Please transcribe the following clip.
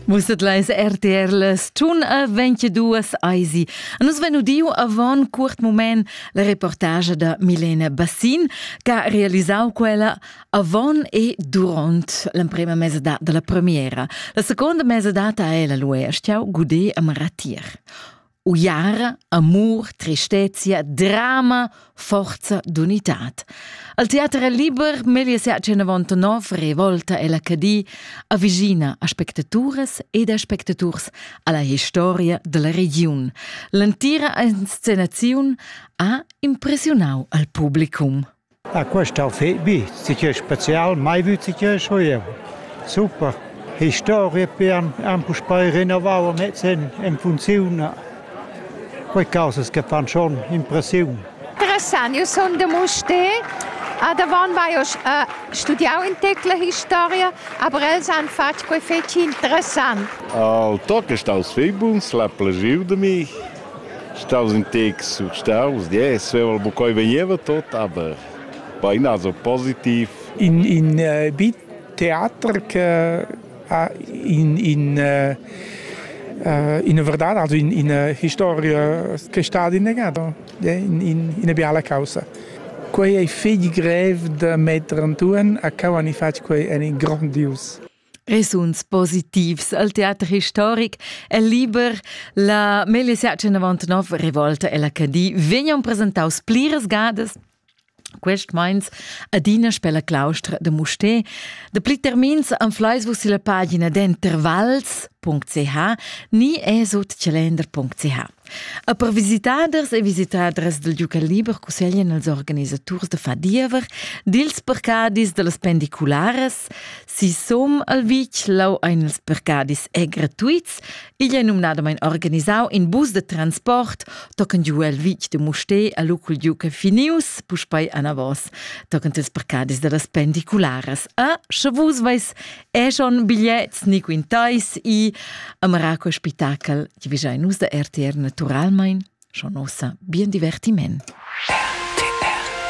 Musset leis RTR les tun a 22 eisi. A nus venu diu avon curt moment la reportage da Milena Bassin che realisau quella avon e duront l'emprema mesa della premiera. La seconda mesa data è la luestiau Gudé a Maratir. Uiar, amur, tristezia, drama, forza d'unitad. Al teater liber meglio se a 199 revolta e la Cadi avvicina aspectaturas ed aspectaturs alla historia della regiun. L'entira inscenazione ha impressionau al publicum. Ah, quest outfit vi, sicür special, mai vü sicür sco jeu. Super. Historia pian han puspei rinnovau mez en, en funziun. Quei causas che fan schon impressiun. Interessant, io sono de Muste. A davon vai ho uh, studiau in tecla historia, aber els han fatg quei fetg interessant. El toc è staus fei buns, l'ha plagiu de mi. Staus ün tec surstaus, ja, e sveva buccoi vegneva tot, aber bainasa positiv. In in bi teater che ha in in ina verdad, also in ina historia che stat innegada, in in ina biala causa. Quei ei fetg grev da metter antun a cau han i fatg quei en in grondius. E suns positivs al teater historic e liber. La meglio search 99 Rivolta e la Cadi vegnan presentaus pliras gadas quest meins adina per la claustra de Musté. De pli termins anfleis vus la pagina d'intervals.ch ni esut calender.ch. E per visitaders e visitadras del duca liber cusseglien als organisaturs da far diever dils percadis dallas pendicularas, si som al vitg lau ein ils percadis è gratuits, igl è numnadamain organisau in bus de transport tochen giu el vitg de Mustè a lu cul duca Finius, puspei anavos, tochen ils percadis dallas pendicularas. A, sche vus veis Eschon bigliets ni quintais i amara quel spitachel ti vigiai nus da RTR naturalmein schon ossa bien divertiment.